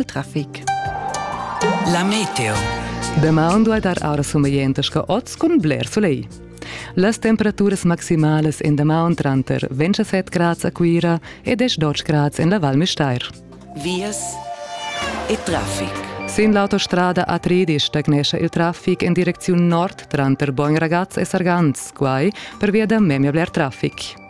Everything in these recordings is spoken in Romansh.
il traffic. La meteo. Damaun duai dar aura sumeglientas che oz cun bler soleil. Las temperaturas maximalas en damaun tranter 27 grads a Cuira e 10 grads en la Val Müstair. Vias e traffic. Sin l'autostrada A3 stagnescha il traffic en direcziun nord tranter Bogn Ragaz e Sargans, quai per via da memia bler traffic.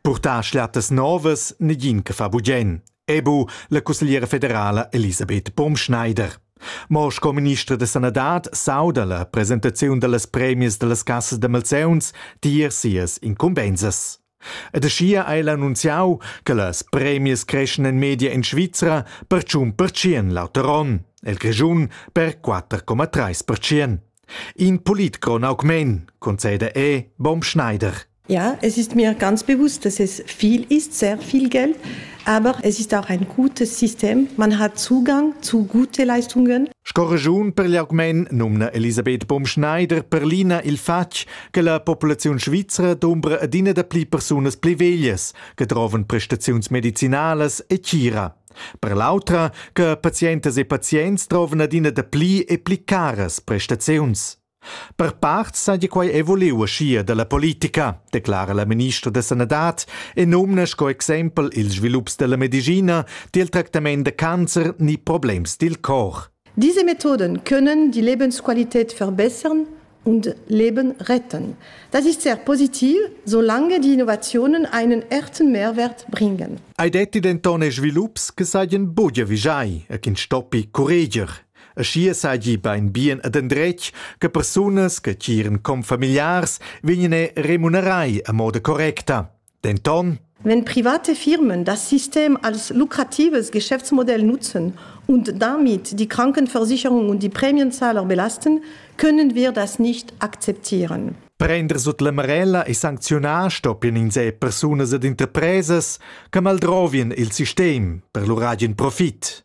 Purtar schlattas novas negin che fa bugen, ebu la cussegliera federala Elisabeth Baumschneider. Mo sco ministra da sanadad sauda la presentaziun dallas premias dallas cassas da malseuns tier sias incumbensas. Ed aschia ha el annunziau che las premias creschan en media en Svizra per tschun percient lauter onn, el Grischun per 4,3 percient. In politcron augment, conceda e Baum Schneider. Ja, es ist mir ganz bewusst, dass es viel ist, sehr viel Geld, aber es ist auch ein gutes System. Man hat Zugang zu guten Leistungen. Scorregiun per gli augment numna Elisabeth Bumschneider per l'ina il fatg che la populaziun svizra dumbra adina da pli persunas pli veglias che trovan prestaziuns medicinalas e cira. Per l'autra che patientas e pazients trovan adina da pli e pli caras prestaziuns. Per part saja quai er vuliu uschia da la politica, declara la ministra da sanadad e nomna sco exempel ils svilups da la medischina, dil tractament da cancer ni problems dil cor. Diese Methoden können die Lebensqualität verbessern und Leben retten. Das ist sehr positiv, solange die Innovationen einen echten Mehrwert bringen. Ei detti denton e svilups che saien bugia vigiai e ch'in stoppi curreger. Aschia seigi beinbien ad endretg che persunas che tgiran confamiliars vegnien remunerai a moda correcta. Denton Wenn private Firmen das System als lukratives Geschäftsmodell nutzen und damit die Krankenversicherung und die Prämienzahler belasten, können wir das nicht akzeptieren. Prender sut la marella e sancziunar stoppien ins e persunas ed interpresas che maldrovien il sistem per lur agen profit.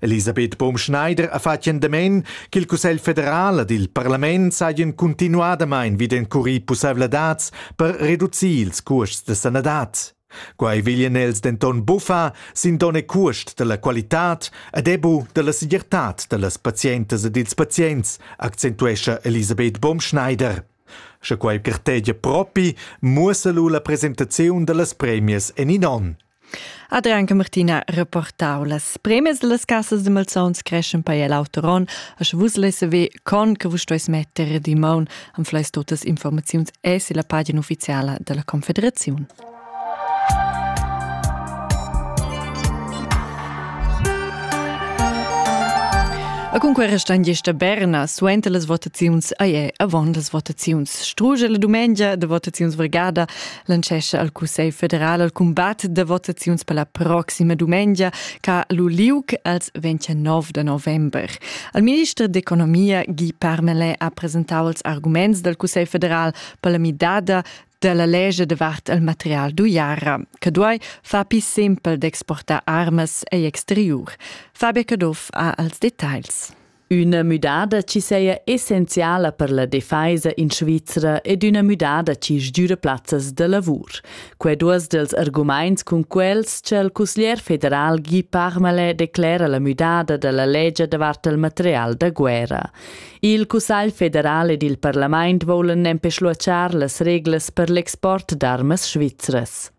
Elisabeth Bohm-Schneider ha fatg endamen ch'il Cussegl federal ed il parlament sajan cuntinuadamain vid encurir pussaivladads per reducir ils custs da sanadad. Quai veglian els denton buffar sin donn e cuost dalla qualitad ed ebu dalla segirtad dallas pazientas ed ils pazients, accentuescha Elisabeth Bohm-Schneider. Sche quai gartegia propi, muossa lu la presentaziun dallas premias en in onn. Adrian Martina reportau. Las premies dallas casas de malsauns creschen per el auter onn, a sche vus lesse ve con che vus stueis metter di maun am fleis totas informaziuns es la pagina ufficiala della Confederazione. A cunque restan gesta Berna suenter las votaziuns ai è avon las votaziuns. Struge la dumengia de votaziuns vargada lancescha al Cussegl federal al cumbat da votaziuns per la proxima dumengia ca lu liug als 29 de november. Al minister d'economia Guy Parmelin ha presentau els arguments dal Cussegl federal per la midada della legge davart il material d'uiara, che duai far più simpel d'exportare armas e exterior. Fabio Caduff ha als dettagls. Üna müdada chi saja essenziala per la defaisa in Svizra ed üna müdada chi sgüra plazzas da lavur. Quai duos dels argumaints cun quels cha il cusglier federal Guy Parmelin declera la müdada da la legia davart il material da guerra. Il Cussagl federal ed il parlament voulan nempe schluachar las reglas per l'export d'armas svizras.